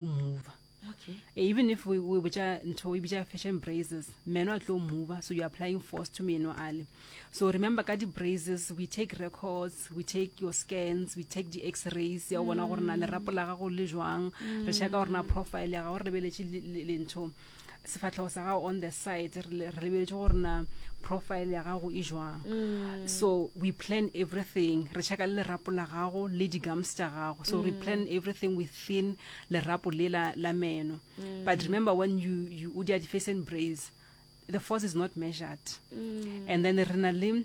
mover okay. Eh, even if we, we botša ntho we bitša fashion braces meno a tlo mover so you're applying force to meno ale so remember ka di-braces we take records we take your scans we take di-x-rays ya o bona gore na lerapo la gago le jwang re shaka gore na profile ya gago re lebeletse lentho le, le, le sefatlhego sa gago on the side re lebeletse gore na profile ya gago e jwang mm. so we plan everything re checka le lerapo la gago le di-gums tša gago so we mm. plan everything within lerapo le la, la meno mm. but remember when you, you o dia di-face and brace the force is not measured and then re na le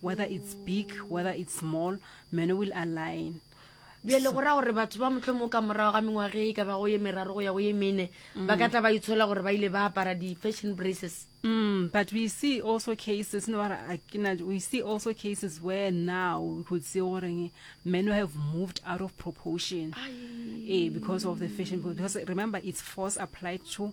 whether it's big, whether it's small, meno will align. Bjale go ra gore batho ba mohlomong ka morago ga mengwage e ka bago ye meraro go ya go ye mene mm. ba ka tla ba itshola gore ba ile ba apara di-fashion braces Mm, but we see also cases no we see also cases where now we could see goreng men who have moved out of proportion eh, because of the fashion because remember it's force applied to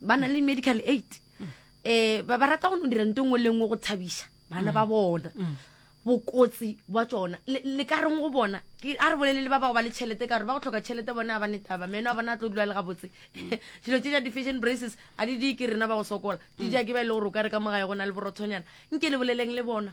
ba na le medical aid eh ba ba rata go no dira nto nngwe le nngwe go tshabiša bana ba bona bokotsi bwa tsona le le ka reng go bona ke a re bolelele ba bago ba le tšhelete ka gore ba go tlhoka tšhelete bone a ba ne taba meno a bona a tlo dula le gabotse dilo tse ja di-fashion braces a di di ke rena ba go sokola di ja ke ba e le gore o ka re ka mogae go na le borothonyana nke le boleleng le bona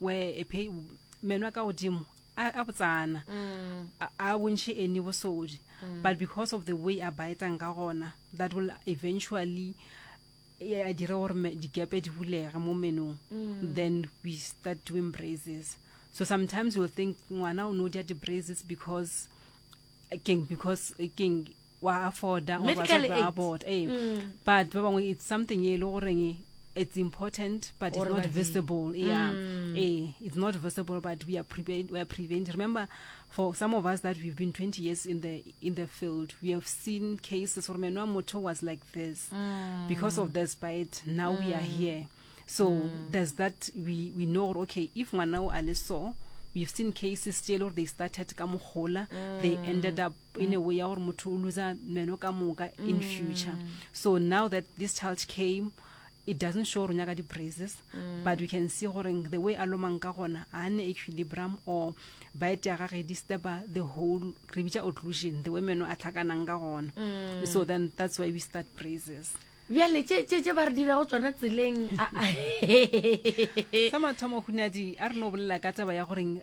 we e phe meno a ka godimo a a botsana a a bontšhe any bosodi but because of the way a baetang ka gona that will eventually e a dire gore me- dikepe di bulege mo menong then we start doing braces so sometimes you'll think ngwana o no dia di-braces because keng because keng wa afforda or Medical batswadi ba aid. afford, eh. but ba bangwe it's something e le goreng it's important but it's Gore not ba di- visible yeah eh, it's not visible but we are, prevent, we are prevent remember for some of us that we've been 20 years in the in the field we have seen cases where menwa motho was like this because of this bite now we are here so there's that we, we know gore, okay if ngwana o a le so we've seen cases tse e le gore they started ka mogola they ended up in a way ya gore motho o loser meno ka moka in mm. future so now that this child came it doesn't show gore o nyaka di-praises mm. but we can see gore the way a lomang ka gona a ne equilibrum or bite ya gage disturba the whole re bitsa occlusion the way meno a tlhakanang ka gona mm. so then that's why we start praises bjale tse ba re dirago tsona tseleng sa mathomo hunadi a re no bolela ka taba ya goreng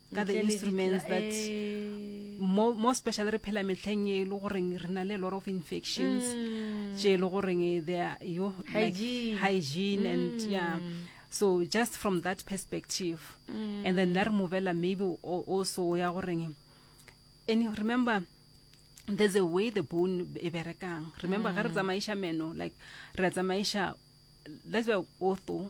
ka the instruments that eh. more, more special re phela metlheng e le goreng re na le lot of infections mm. tše e le goreng eh, they are yo like hygiene and mm. yeah so just from that perspective mm. and then la re movela maybe also ya goreng and you remember there's a way the bone e berekang remember ga re tsamaiša meno like re tsamaiša that's why otho